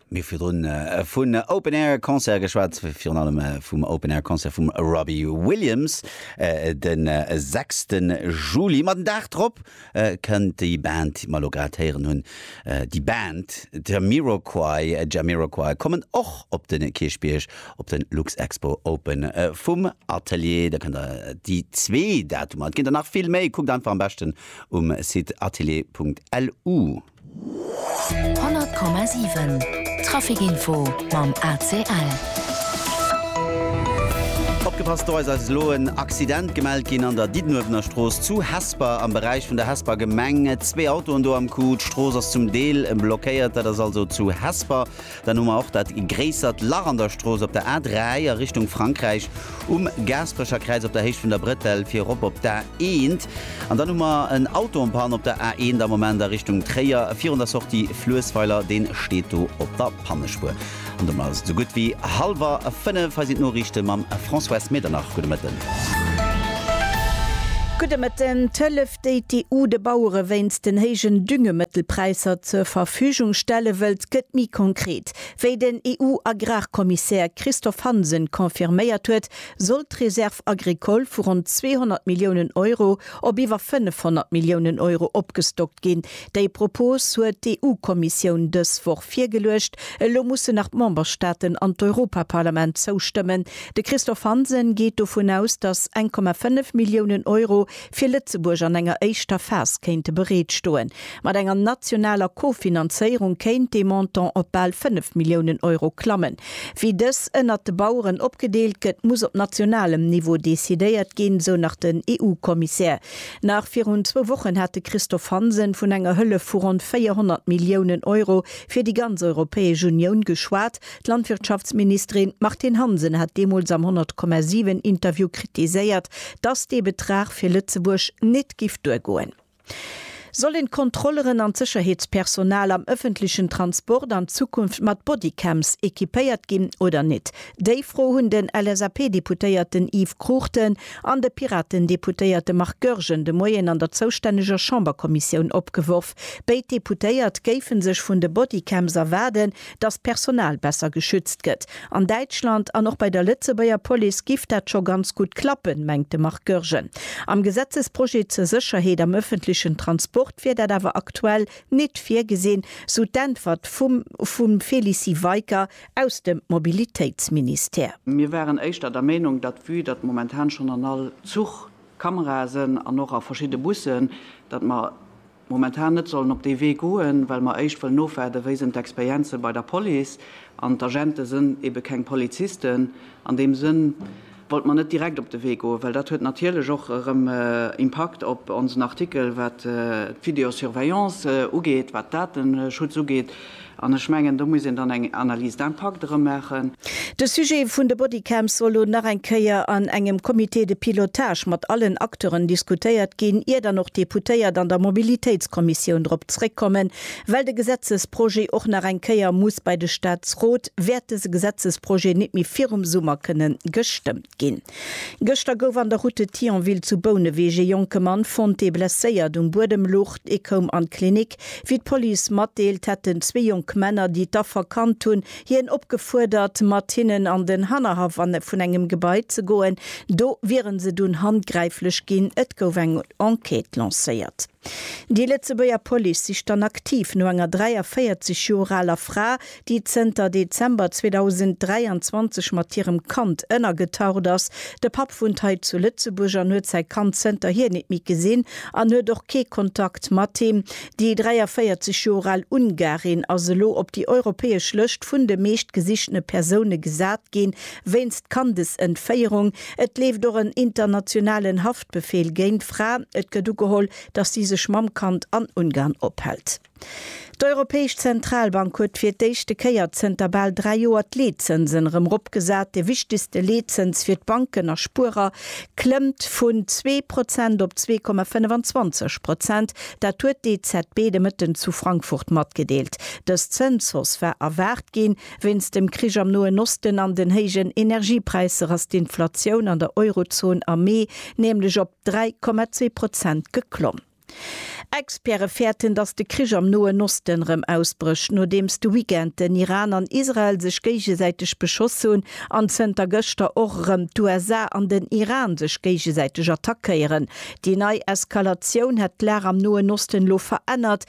Mir virdrun vun Open Air Concert geschwat, virun allem vum Open Air Concert vum Robbie Williams de 6. Juli. Ma den Dag drop kënnt déi Band, déi mer elo grad héieren hunn, déi Band Jamiroquai, Jamiroquai kommen och op de Kierchbierg op de Luxexpo Open vum Atelier. Da kënnt der déi zwee Datumer, et ginn der nach vill méi, kuckt einfach am beschten um Site atelier.lu. 100,7 Traficinfo mam ACL. Opgepasst, do eis eis elo en Accident gemellt ginn an der Diddenuewener Strooss zu Hesper am Beräich vun der Hesper Gemeng. Zwee Autoen do am Coup. D'Strooss ass zum Deel blockéiert. Dat ass also zu Hesper. Dann hu mer och dat gréissert Lach an der Strooss op der A3 a Richtung Frankräich, um Gaasperecherkräiz op der Héicht vun der Bretelle fir erop op d'A1. An dann hu mer en Auto en panne op der A1 am Moment a Richtung Tréier virun der Sortie Fluessweiler. Deen steet do op der Pannespuer. An domat ass et esou gutt wéi hallwer 5. Hei sinn d'Noriichte mam Françoise Medernach. Gudde Mëtten. Gudde Mëtten. déi d'EU de Bauere wéinst den héijen Düngemëttelpräisser zur Verfügung stelle wëllt, gëtt méi konkret. Wéi den EU-Agrarkommissär Christophe Hansen confirméiert huet, soll d'Réserve agricole vu ronn 200 Milliounen Euro op iwwer 500 Milliounen Euro opgestockt ginn. Déi Propos huet d'EU-Kommissioun dës Woch virgeluecht. Elo mussen nach d'Memberstaaten an d'Europaparlament zoustëmmen. De Christophe Hansen geet dovun aus, datt 1,5 Milliounen Euro fir Lëtzebuerg an enger éischter Phas kéinte bereet stoen. Mat enger nationaler Kofinanzéierung kéint dee Montant op bal 5 Milliounen Euro klammen. Wéi dës ënnert de Baueren opgedeelt gëtt, muss op nationalem Niveau decidéiert ginn, sou nach den EU-Kommissär. Nach virun zwou Wochen hat de Christophe Hansen vun enger Hëllef vu ronn 400 Milliounen Euro fir déi ganz Europäesch Unioun geschwat. D'Landwirtschaftsministerin Martine Hansen hat deemools am 100,7 Interview kritiséiert, dass dee Betrag fir Lëtzebuerg nit giff duergoen. Sollen d'Kontrolleren an d'Sécherheetspersonal am ëffentlechen Transport an Zukunft mat Bodycams equipéiert ginn oder nit? Déi Fro hunn den LSAP-Deputéierten Yves Cruchten an de Piraten-Deputéierte Marc Goergen de Moien an der zoustänneger Chamberkommissioun opgeworf. Béid Deputéiert géife sech vun de Bodycams erwaarden, datt d'Personal besser geschützt gëtt an Däitschland an och bei der Lëtzebuerger Police giff dat scho ganz gutt klappen, mengt de Marc Goergen. Am Gesetzesprojet zur Sécherheet am ëffentlechen Transport wier dat awer aktuell nit virgesinn, sou d'Äntwert vum vum Félicie Weicker aus dem Mobilitéitsministère. Mir waren éischter der Meenung, datt vue datt momentan schonn an all Zuch Kamerae sënn an och a verschidde Bussen, datt mer momentan net sollen op dee Wee goen, well mer éischt wëllen ofwaarden, wéi sinn d'Experienze bei der Police, an d'Agente sinn ebe keng Polizisten. An deem Sënn wollte mer net direkt op de Wee goen, well dat huet natierlech och erëm Impakt op onsen Artikel, wat d'Videosurveillance ugeet, wat d'Dateschutz ugeet, An ech mengen, do muss een dann eng Analyse d'impact erëm maachen. De Sujet vun de Bodycams soll lo nach eng Kéier an engem Comité de pilotage mat allen Acteuren diskutéiert ginn, ier dann och d'Deputéiert an der Mobilitéitskommissioun drop zréckkommen, well de Gesetzesprojet och nach eng Kéier muss bei de Staatsrot, wäert dese Gesetzesprojet nit méi virum Summer kënnen gestëmmt. Ginn. Gëschter gouf an der Route de Thionville zu Bouneweg ee jonke Mann fonnt, dee blesséiert um Buedem lucht. Hie koum an d'Klinik. Wéi d'Police matdeelt, hätten zwee jonk Männer, déi d'Affer kannt hunn, hien opgefuerdert, mat hinnen an den Hannerhaff vun engem Gebai ze goen. Do wiere se dunn handgräiflech ginn. Et gouf eng Enquête lancéiert. Déi Lëtzebuerger Police sicht dann aktiv no enger 43 Joer aler Fra, déi zënter Dezember 2023 mat hirem Kand ënnergetaucht ass. De Papp wunnt hei zu Lëtzebuerg an huet säi Kand zënterhier nit méi gesinn an huet och kee Kontakt mat him. Déi 43 Joer al Ungarin ass elo op déi europäesch Lëscht vun de meescht gesichtene Persoune gesat ginn, wéinst Kandesentféierung. Et leeft och en internationalen Haft. Befehl géint d'Fra, et gëtt ugeholl, datt si sech mam Kand an Ungarn ophält. D'Europäesch Zentralbank huet fir d'éischte Kéier zënter bal dräi Joer d'Leetzënsen erëm eropgesat. De wichtegste Leetzëns fir d'Banken a Spuerer klëmmt vun zwee Prozent op zwee Komma 25 Prozent. Dat huet d'EZB de Mëtten zu Frankfurt matgedeelt. Dës Zënshausse war erwaart ginn. Wéinst dem Krich am Noen Osten an den héijen Energiepräisser ass d'Inflatioun an der Eurozon am Mee nämlech op 3,2 Prozent geklomm. Experte fäerten, datt de Krich am Noen Osten rëm ausbrécht, nodeems de Weekend den Iran an Israel sech géigesäiteg beschoss hunn an zënter gëschter och rëm d'USA an den Iran sech géigesäiteg attackéieren. Déi nei Eskalatioun hätt d'Lag am Noen Osten elo verännert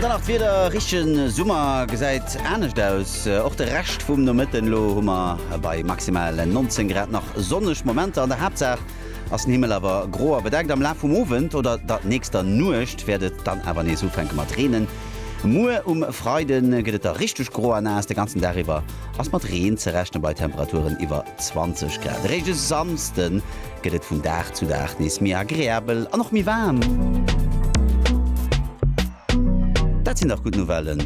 An dann nach d'Wieder, richtegen Summer gesäit anescht aus, och de Rescht vum Nomëtten. Elo hu mer bei maximal 19 Grad nach sonneg Momenter. An der Haaptsaach ass den Himmel awer gro a bedeckt. Am Laf vum Owend oder der nächster Nuecht wäert et dann awer nees ufänke mat reenen. Muer um Freide gëtt et da richteg gro a naass. De ganzen Dag iwwer ass mat Reen ze rechnen, bei Temperaturen iwwer 20 Grad. Eréischt e Samsden gëtt et vun Dag zu Dag nees méi agreabel an och méi waarm. Dat sinn dach gutt Nouvellen!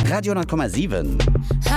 Radio 10,7.